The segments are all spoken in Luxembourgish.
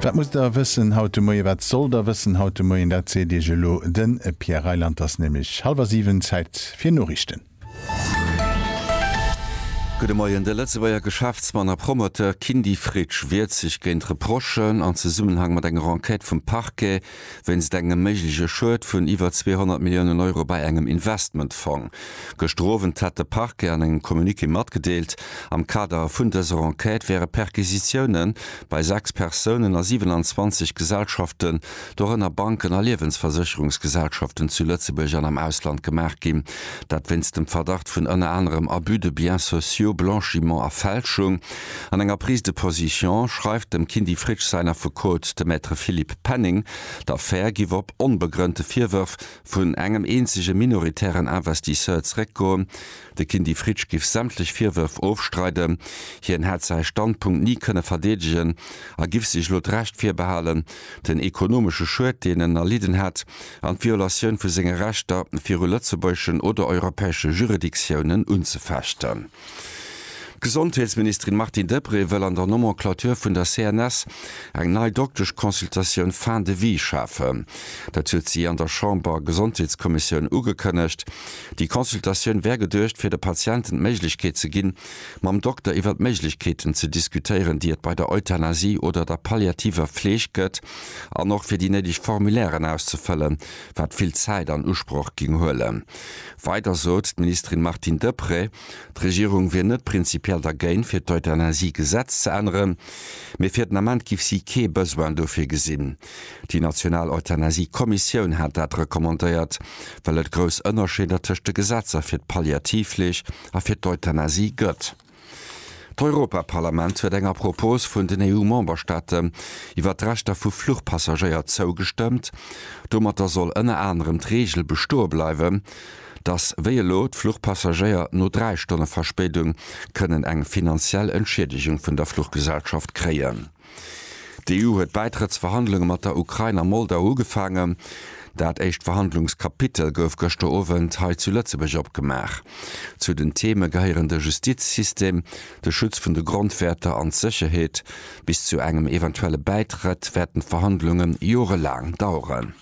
Wat musst Der wëssen haut de Moien? Wat sollt Der wëssen haut de Moien? Dat seet Iech elo de Pierre Reyland. Et ass nämlech hallwer siwen, Zäit fir Noriichten. Gudde Moien. De Lëtzebuerger Geschäftsmann a Promoteur Kindy Fritsch wiert sech géint Reprochen am Zesummenhang mat enger Enquête vum Parquet, wéinst engem méigleche Schued vun iwwer 200 Milliounen Euro bei engem Investmentfong. Gëschter Owend hat de Parquet an engem Communiqué matgedeelt, am Kader vun dëser Enquête wäre Perquisitioune bei 6 Persounen a 27 Gesellschaften, dorënner Banken a Liewensversécherungsgesellschaften, zu Lëtzebuerg an am Ausland gemaach ginn. Dat wéinst dem Verdacht vun ënner anerem Abus de biens sociaux, Blanchiment a Fälschung. An enger Prise de position schreift dem Kindy Fritsch säin Affekot, de Maître Philippe Penning, d'Affär giff op onbegrënnte Virwërf vun engem eenzege minoritären Investisseur zeréckgoen. De Kindy Fritsch giff sämtlech Virwërf ofstreiden, hien hätt säi Standpunkt ni kënne verdeedegen a giff sech elo d'Recht virbehalen, den ekonomesche Schued, deen en erlidden hätt, an d'Violatioun vu senge Rechter viru lëtzebuergeschen oder europäesche Juridictiounen unzefechten. D'Gesondheetsministerin Martine Deprez wëll an der Nomenclature vun der CNS eng nei Doktesch-Consultatioun Fin de vie schafen. Dat huet si an der Chamber-Gesondheetskommissioun ugekënnegt. Déi Consultatioun wär geduecht, fir de Patienten d'Méiglechkeet ze ginn, mam Dokter iwwer d'Méiglechkeeten ze diskutéieren, déi et bei der Euthanasie oder der palliativer Fleeg gëtt, an och fir déi néideg Formulairen auszefëllen, wat vill Zäit an Usproch géing huelen. Weider sot d'Ministerin Martine Deprez, d'Regierung wier net prinzipiell dergéint, fir d'Euthanasie-Gesetz ze änneren, mee fir den Ament géif si kee Besoin dofir gesinn. Déi national Euthanasie-Kommissioun hat dat recommandéiert, well et grouss Ënnerscheeder tëscht de Gesetzer fir d'Palliativfleeg a fir d'Euthanasie gëtt. D'Europaparlament huet enger Propos vun den EU-Memberstaaten iwwer d'Rechter vu Fluchpassagéier zougestëmmt. Domatter soll ënner anerem d'Reegel bestoe bleiwen, datt wéi elo d'Fluchpassagéier no dräi Stonne Verspéidung kënnen eng finanziell Entschiedegung vun der Fluchgesellschaft kréien. D'EU huet d'Bäitrëttsverhandlunge mat der Ukrain a Moldau ugefaangen. Dat éischt Verhandlungskapitel gouf gëschter Owend hei zu Lëtzebuerg opgemaach. Zu den Theme gehéieren de Justizsystem, de Schutz vun de Grondwäerter an d'Sécherheet. Bis zu engem eventuelle Bäitrëtt wäerten d'Verhandlunge jorelaang daueren.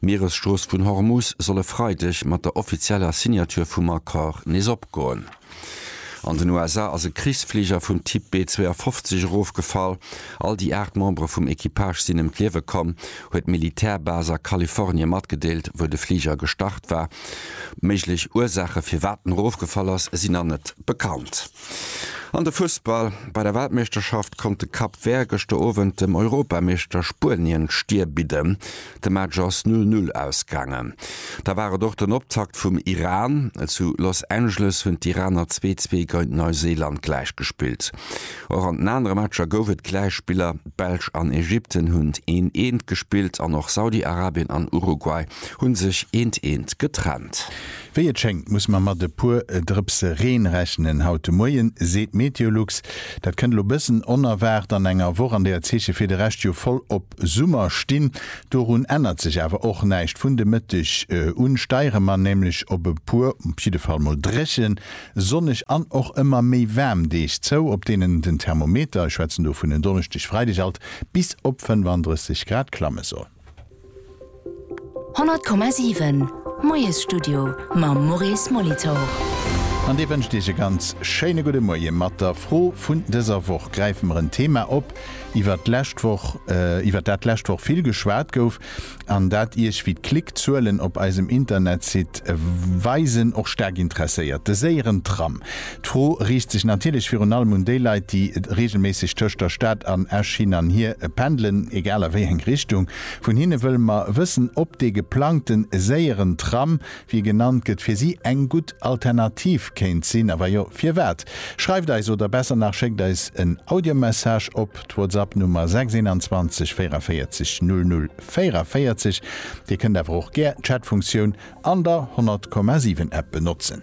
D'Mieresstrooss vun Hormus soll e Freideg mat der offizieller Signature vum Accord nees opgoen. An den USA ass e Krichsfliger vum Typ B-52 erofgefall. All déi 8 Membere vum Equipage sinn ëm d'Liewe komm, huet d'Militärbas a Kalifornie matgedeelt, wou de Fliger gestart war. Méiglech Ursaache firwat en erofgefall ass, sinn nach net bekannt. An de Fussball, Bei der Weltmeeschterschaft konnt de Cap Vert gëschter Owend dem Europameeschter Spuenien d'Stier bidden. De Match ass Null Null ausgaangen. Da war et och den Optakt vum Iran. Zu Los Angeles hunn d'Iraner zwee zwee geint Neuseeland gläich gespillt. Och an den anere Matcher gouf et Gläichspiller. D'Belsch an Ägypten hunn een eent gespillt an och Saudi-Arabien an Uruguay hu sech eent eent getrennt. Wéi et schéngt, muss mer mat e puer Drëpse Reen rechnen haut de Moien, seet d'Meteolux. Dat kënnt elo bëssen onerwaart an enger Woch, an där d'Zeeche fir de Rescht jo voll op Summer stinn. Dorun ännert sech awer och näischt. Vun de Mëtteg un steiere mer nämlech op e puer op jidde Fall mol dréchen, sonneg an och ëmmer méi waarm Deeg zou, op deenen den Thermometer, ech schwätzen do vun en Donneschdeg, Freideg alt bis op 35 Grad klamme soll. 100,7 Moiesstudio mam Maurice Molitor. An Dir wënscht Iech e ganz schéine gudde Moie. Mat der Fro vun dëser Woch gräife mer en Thema op, iwwert d'lescht Woch, iwwert dat d'lescht Woch vill geschwat gouf an dat Iech, wéi d'Klickzuelen op eisem Internetsite weisen, och staark interesséiert, de séieren Tram. D'Fro riicht sech natierlech virun allem un déi Leit, déi reegelméisseg tëscht der Stad an Esch hin an hier pendelen, egal a wéi eng Richtung. Vun hinne wëlle mer wëssen, ob dee geplangte séieren Tram, wéi e genannt gëtt, fir si eng gutt Alternativ kéint sinn, a wa jo, firwat? Schreift eis, oder besser nach, schéckt eis en Audiomessage op d'Whatsapp-Nummer 621 44 00 44. Dir kënnt awer och gär d'Chatfunktioun an der 100,7 App benotzen.